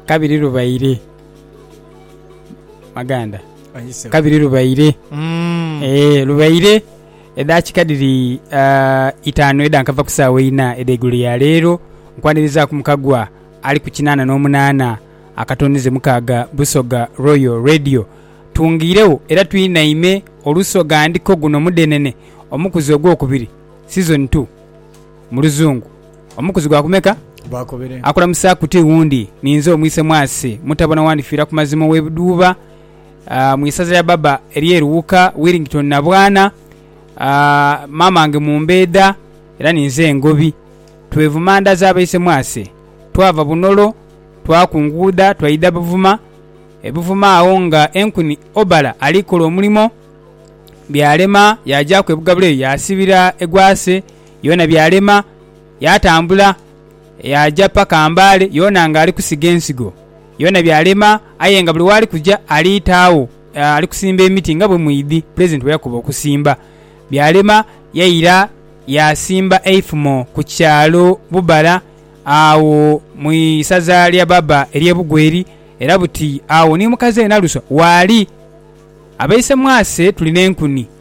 kabiri lubaire maganda Ayise. kabiri lubaire Mm. Eh, lubaire edakika dhiri ah, itaanu eda nkava ku saawa eina ed'eigulo ya leero nkwanirizaku mukagwa ali ku kinaana n'omunaana akatonize mukaaga busoga royal radio tungiirewo era twinaime olusoga ndiko guno mudenene omukuzi ogwokubiri season 2 Mu luzungu, Omukuzi gwa kumeka? Bakobere. Akulamusaaku ti wundi, ni nze omwise Mwasi, mutabona wa Ndifiira ku Mazima ow'e Budhuuba mu isaza lya baba ery'e Luwuka, Willington Nabwana. Maamange Mumbeedha era ni nze Ngobi. Twevuma nda za baise Mwasi. Twava Bunolo, twakunguudha twaidha Buvuma. E Buvuma agho nga Enkuni Obala ali kola omulimo, byalema, yaagyaku e Bugabula eyo yaasibira egwase. yona byalema yatambula yaja paka mbale yona nga ali kusiga ensigo yona byalema aye nga buli wali kuja ali taagho ali kusimba emiti nga bwe mwidhi pulezidenti bwe yakoba okusimba. Byalema yaira yasimba eifumo ku kyalo Bubala agho mu isaza lya Baba erye Bugweri era buti agho ni mukazi we Naluswa waali. Abeisemwase tuli ne nkuni.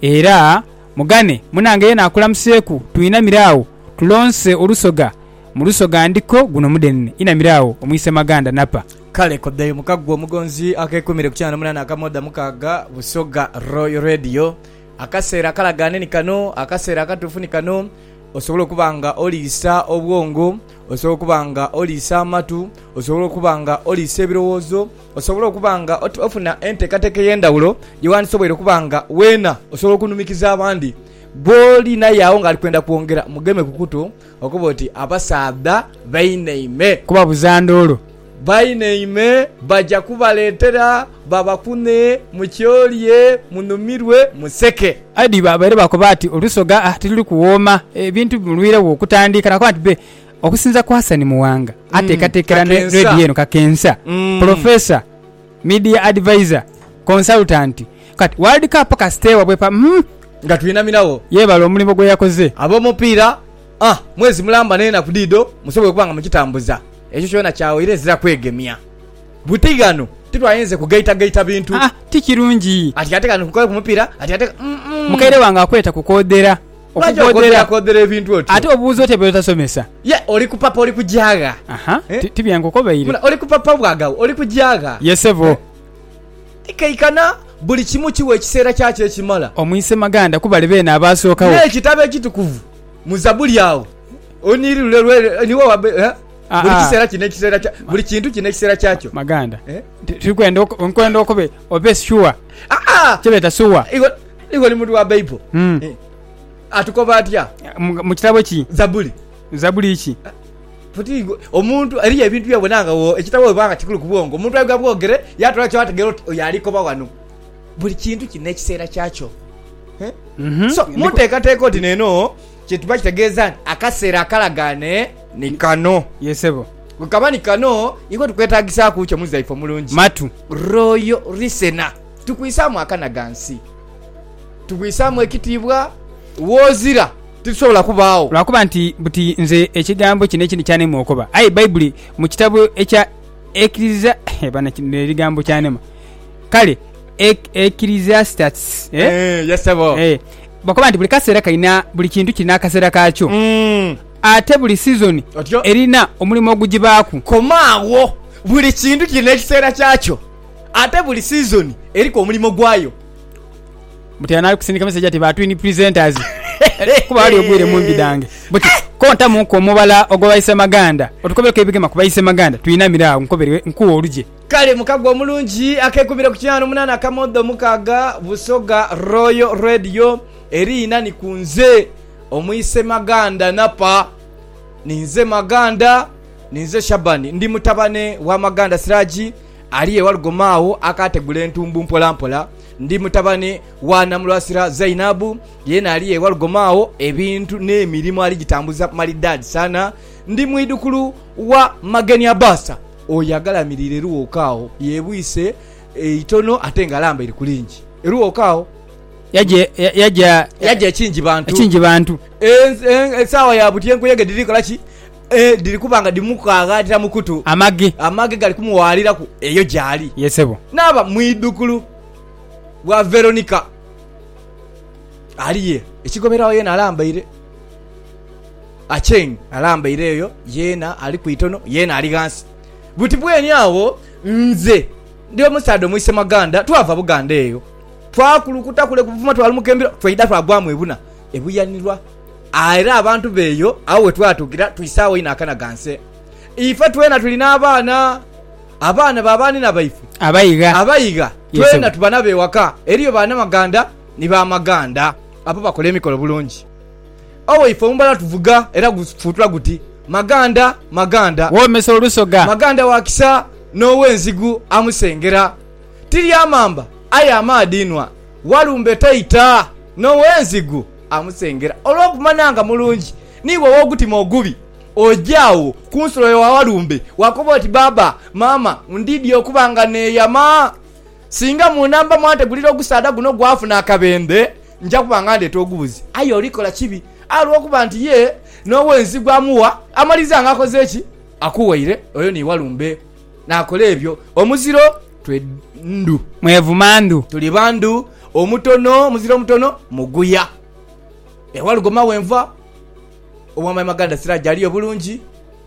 Era mugane munange yena akulamuseeku twinamire agho tulonse olusoga mu lusoga ndiko guno mudhenene inamire agho omwise Maganda napa. Kale kodheyo muka ggwe omugonzi akeekuumire ku kyaana munaana akamoda mukaaga Busoga Royal Radio. Akaseera akalagaane ni kano, akaseera akatuufu ni kano. Osobole okuba nga oliisa obwongo, osobole okuba nga oliisa amatu, osobole okuba nga oliisa ebirowoozo, Osobole okuba nga ofuna enteekateeka ey'endhawulo gye wandisoboire okuba nga weena osobola okunumikiza abandi. Gw'oli naye agho ng'ali kwenda kwongera, mugeme ku kutu okobe oti, Abasaadha bainaime. Kubabuza ndulu. Bainaime baja kubaleetera babakunhe, mukyolye, munumirwe, museke. Eddie baabaire baakoba ati, Olusoga, ah, tiruli kuwooma. Ebintu bimulwiregho okutandika. Naakoba nti, Bee. Okusinza ku Hassan Muwanga ateekateekera ne Radio eno Kakensa, Professor, Media Advisor, Consultant, kati World Cup kasita ewa bwepa uhmm. Nga twinamirawo. Yeebale omulimu gwe yakoze. Ab'omupiira ah mwezi mulamba n'enaku dhidho musobola okuba nga mukitambuza. Ekyo kyona kyawaire ezira kwegemya buti ghano titwayinze kugaitagaita bintu. Haa ti kirungi. Ati ate kano nkola ku mupiira ati ate uhmm. Mukaire wange akweta kukoodhera. Lwaki okodhera kodhera ebintu otyo? Ate obuuza otya by'otasomesa? Ye oli ku papa oli kugyagha. Aha, Eh? ti- tibyankukobaire. Muna, oli ku papa bwagagho oli kugyagha. Ye sebo, Eh. Tikaikana buli kimu kiwa ekiseera kyakyo ekimala. omwise Maganda kubali beene abaasookawo. N'ekitabo ekitukuvu mu Zabuli agho oniiri lule lwe niwe wabe eh? Ah, buli ah. kiseera kino ekiseera kya buli kintu kino ekiseera kyakyo. Maganda, Eh? ti- turi kwenda oku- nkwenda okube obe sure. Ah, ah! Kyebeeta sure. Iwe- Iwe oli muntu wa Baibo. Mm. Eh, Atukoba atya? Mu, mu kitabo ki? Zabuli. Zabuli ki? Futi igo- omuntu eriyo ebintu byobona nga wo- ekitabo weba nga kikulu ku bwongo omuntu aibwa bwogere yatula kyategera oti oyo alikoba wano buli kintu kirina ekiseera kyakyo Eh? Mhm. so Ndi- munteekateeka oti neno kyetuba kitegeeza nti akaseera akalagaane ni kano Yes, sebo. bwekaba ni kano ikwe tukwetagisaaku kyo muzaife omulungi Matu. royo lisena Titukwisaamu akana gha nsi. Tubwisaamu ekitiibwa w'ozira. Titusobola kubaagho. Lwa kuba nti buti nze ekigambo kino ekindi kyanema okoba. Aye Baibuli mu kitabo ekya Ekiriza, eh, bana, kino ebigambo kyanema. Kale, Ek, Ecclesiastes, eh? Eeh, yes sebo. Eh, bakoba nti buli kaseera kalina, buli kintu kirina akaseera kaakyo. Mm. Ate buli sizoni Otyo. erina omulimo ogugibaaku. Koma agho. Buli kintu kirina ekiseera kyakyo. Ate buli sizoni eriku omulimo gwayo. Butera nali kusindika message ati ba twin presenters kuba wali ogwire mumbi dange buti kontamu ku omubala ogwa baise maganda otukobereku ebigema ku baise maganda twinamire agho nkobere nkuwe olugye. Kale mukago omulungi akekubire ku kinaana omunaana akamodo mukaaga Busoga Royal Radio eri ina ni ku nze omwise maganda napa ninze maganda. Ninze Shabani, ndi mutabane wa Maganda Siraji ali e Walugoma agho akaategula entumbu mpolampola. Ndi mutabane wa Namulwasira Zainabu, yeena ali e Walugoma agho, ebintu n'emirimo aligitambuza malidaadi sana. Ndi mwidhukulu wa Mageni Abaasa, oyo agalamiriire Luwooka agho, yeebwise eitono ate ng'alambaire ku lingi e Luwooka agho. Yaja ekingi bantu, esaawa ya buti enkuyege dhiri kola ki? E, dhiri kuba nga dhimukaaghaanira mu kutu. Amaghe. Amaghe gali kumuwaaliraku eyo gy'ali. Ye sebo. Naaba mwidhukulu wa Veronica. Ali ye. Ekigoberagho yeena alambaire. Acheng alambaire eyo, yeena ali ku itono, yeena ali ghansi. Buti bweni agho, nze ndi omusaadha Omwisemaganda, twava Buganda eyo. Twakulukuta kule ku buvumo twa Lumukembiro, twaidha twagwamu ebuna ebuyanirwa. Era abantu b'eyo agho we twatuukira twisaagho inho akanaghanse. Ife twena tuli n'abaana, abaana ba baanina baife abaigha, twena tuba nabo ewaka. Eriyo banamaghanda ni bamaghanda abo bakola emikolo bulungi. Owe ife omumbala tuvuga era gufuutula guti, Maghanda, maghanda, woomesa olusoga, maghanda wa kisa n'ow'enzigu amusengera. Ti lya mamba, aye amaadhi inhwa, walumbe taita, n'ow'enzigu amusengera olw'okumanya nga mulungi, niiwe ow'ogutima ogubi, oja agho ku nsulo yo awalumbe, waakoba oti, Bbaabba, maama, ndiidhi okuba nga neeyama. Singa mu namba mwantegulira ogusaadha guno gwafuna akabendhe, nja kuba nga ndeeta ogubuzi. Aye olikola kibi, aye olw'okuba nti ye n'ow'ensi gw'amuwa, amaliza nga akoze ki? Akuwaire oyo ni walumbe. Naakola ebyo omuziro twe ndhu. Mwevuma ndhu. Tuli ba ndhu. Omutono, omuziro omutono muguya. Ewa Lugoma we nva, owa my Maganda Siraje aliyo bulungi,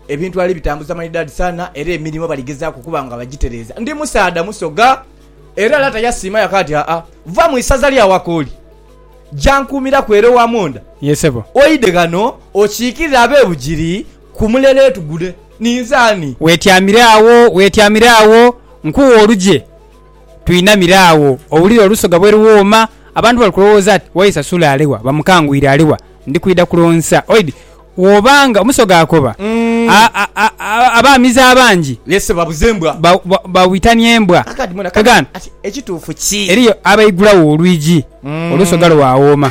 ebintu ali bitambuza maridadi sana era emirimo bali gezaaku okuba nga bagitereeza. Ndi musaadha Musoga era Lata yasiima yaka ati, Haa, va mu isaza lya Wakooli, ja nkuumiraku ere owa Mwonda, Ye sebo. oidhe ghano okiikirire ab'e Bugiri. Ku mulereetu gule ninze ani? Weetyamire agho, weetyamire agho, nkuwe olugye. Twinamire agho, owulire olusoga bwe luwooma. Abantu bali kulowooza ati, Waisa Sule ali wa? Bamukangwire ali wa? Ndi kwidha kulonsa. Oidhi woba nga omusoga akoba, abaamizi abangi bawitania embwa. Eriyo abaigulagho olwigi, olusoga lwawooma.